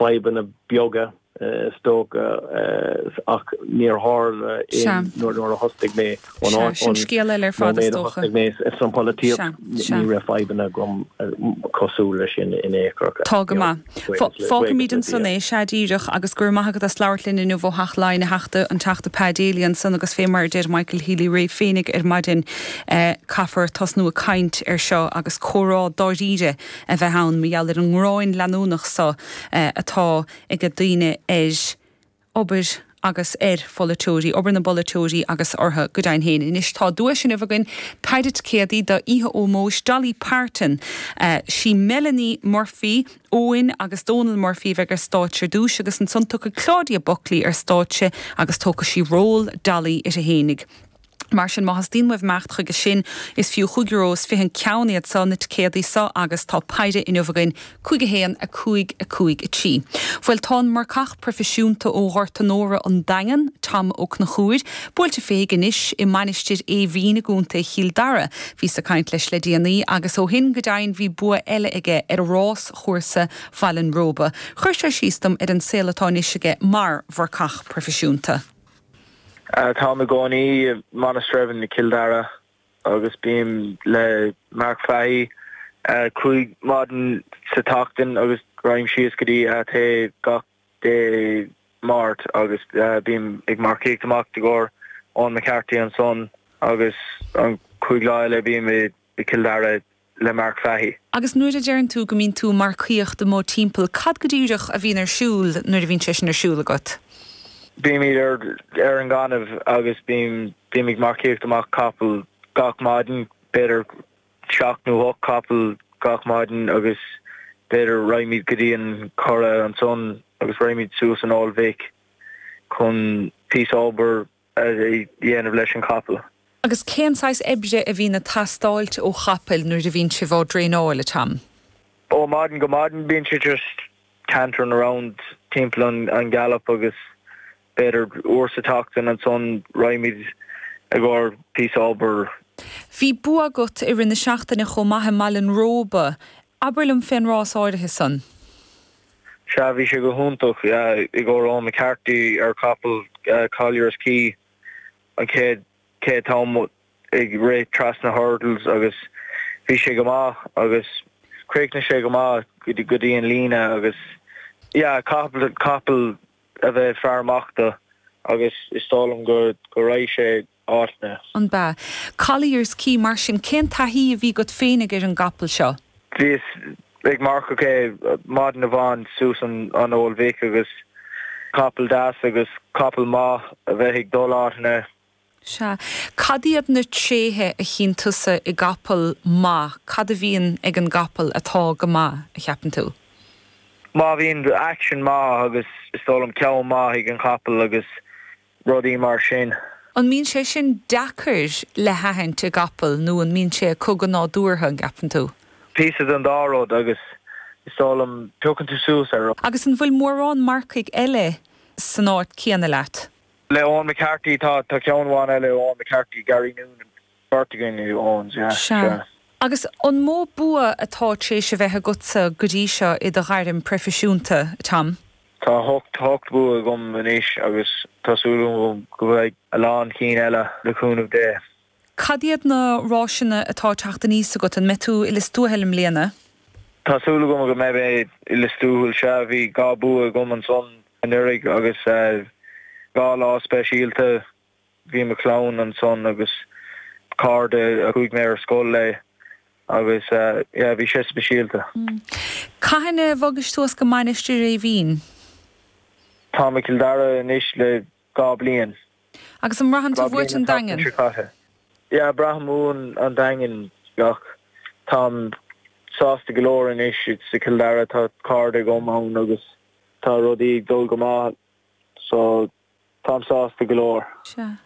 fadhbanna beaga, is dócha, ach níor tharla aon nuair a thosaigh mé ón nóiméad a thosaigh mé sa pholaitíocht, ní raibh fadhbanna agam cosúil leis sin in aon chor. Tá go maith. Fágfaimid ansan é, sea díreach, agus go raibh maith agat as labhairt linn inniu ó Theach Laighean, a Theachta, an Teachta Pa Daly ansan agus fé mar a deir Michael Healy-Rae féinig ar maidin, caithfear tosnú ag caint air seo agus comhrá dáiríre a bheith ann mar gheall ar an ngráin leanúnach so atá ag daoine ar obair agus ar pholaiteoirí, obair na bpolaiteoirí agus orthu go deimhin féin. Anois tá duais inniu againn, péire ticéadaí d'oíche ómóis Dolly Parton. 'Sí Melanie Murphy, Eoin agus Dónal Murphy a bheidh ar stáitse ar dtúis agus ansan tiocfaidh Claudia Buckley ar stáitse agus tógfaidh sí ról Dolly uirthi fhéinig. Mar sin, má theastaíonn uaibh imeacht chuige sin, is fiú chúig euro is fiche an ceann iad seo, na ticéadaí seo, agus tá péire inniu againn, cúig a haon, a cúig, a cúig a trí. Bhuel, tá an marcach proifisiúnta ó Ghort Onóra, an Daingean, Tom Ó Conchúir, buailte féig anois i Mainistir Éimhín i gContae Chill Dara. Bhíos ag caint leis le déanaí, agus ó shin, go deimhin, bhí bua eile aige ar ráschúrsa Bhaile an Róba. Chuir sé síos dom ar an saol atá anois aige mar mharcach proifisiúnta. Táim ag cónaí i Monasterevin i Cill Dara agus bím le Mark Fahey cúig maidin sa tseachtain agus téim síos go dtí Athea gach Dé Máirt agus bím ag marcaíocht amach i gcomhair Eoin McCarthy ansan agus an cúig lá eile bím i Cill Dara le Mark Fahey. Agus nuair a deireann tú go mbíonn tú ag marcaíocht amuigh timpeall, cad go díreach a bhíonn ar siúl nuair a bhíonn sé sin ar siúl agat? Bímid ar an ngaineamh agus bím ag marcaíocht amach capaill gach maidin, b'fhéidir seacht nó hocht capaill gach maidin agus b'fhéidir raghaimid go dtí an Curragh ansan agus raghaimid suas an Old Vic chun píosa obair a dhéanamh leis an gcapall. Agus cén saghas oibre a bhíonn ag teastáilt ó chapaill nuair a bhíonn sibh á dtraenáil, a Tom? Ó mhaidin go maidin bíonn siad just cantering around, timpeall an gallop agus b'fhéidir uair sa tseachtain ansan raghaimid i gcomhair píosa obair. Bhí bua agat i rith na seachtaine chomh maith i mBaile an Róba, Abair liom fén rás áirithe san. Sea, bhí sé go hiontach, i gcomhair Eoin McCarthy ar chapall Collier's Quay, an chéad chéad t-am ag rith trasna hurdles agus bhí sé go maith agus chríochnaigh sé go maith go dtí an líne agus sea, caithfidh capall a bheith fear amach do agus is dóigh liom go raibh sé. áit na. An b'ea? Collier's Quay, mar sin cén taithí a bhí agat féinig ar an gcapall seo? Bhíos ag marcaíocht é maidin amháin suas an Old Vic agus capall deas agus capall maith a bheith ag dul áiteanna. Sea. Cad iad na tréithe a chíonn tusa i gcapall maith? Cad a bhíonn ag an gcapall atá go maith, a cheapann tú? Má bhíonn action maith agus is dóigh liom ceann maith ag an chapall agus rudaí mar sin. An mbíonn sé sin deacair le haithint i gcapall nó an mbíonn sé chugat go nádúrtha, an gceapann tú? Píosa den dá rud agus is dóigh liom piocann tú suas air. Agus an bhfuil mórán marcaigh eile san áit céanna leat? Le Eoin McCarthy, tá, tá ceann amháin eile, Eoin McCarthy, Gary Noonan, Beirt againn in Eoin's, yeah, sea. Sea. Agus an mó bua atá tar éis a bheith agatsa go dtí seo i do ghairm proifisiúnta, Tom? Tá ocht bua agam anois agus tá súil agam go bhfaighidh a lán cinn eile le cúnamh Dé. Cad iad na ráiseanna atá ag teacht aníos agat? An mbeidh tú i Lios Tuathail i mbliana? Tá súil agam go mbeidh mé i Lios Tuathail, sea. Bhí dhá bua agam ansan anuraidh agus dhá lá speisialta Bhí mo chlann ansan agus cairde a chuaigh mé ar scoil leo agus yeah bhí sé speisialta. Cathain a bhog tú suas go Mainistir Eimhín? Táim i Cill Dara anois le dhá bliain. Agus an mbraitheann tú uait an Daingean? Yeah braithim uaim an Daingean ach táim sásta go leor anois sa Cill Dara tá cairde agam ann agus tá rudaí ag dul go maith so. Táim sásta go leor. Sea.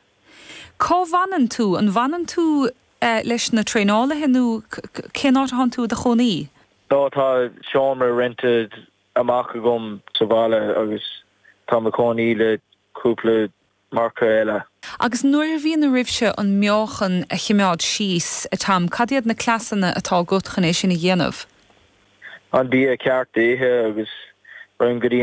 Cá bhfanann tú? An bhfanann tú leis na traenálaithe nó cén áit atánn tú i do chónaí? Sea, tá seomra roinnte amach agam sa bhaile agus táim i mo chónaí le cúpla marcach eile. Agus nuair a bhíonn oraibhse an meáchan a chimeád síos, a Tom, cad iad na cleasanna atá agat chun é sin a dhéanamh? Sea. An bia ceart a ithe agus téim go dtí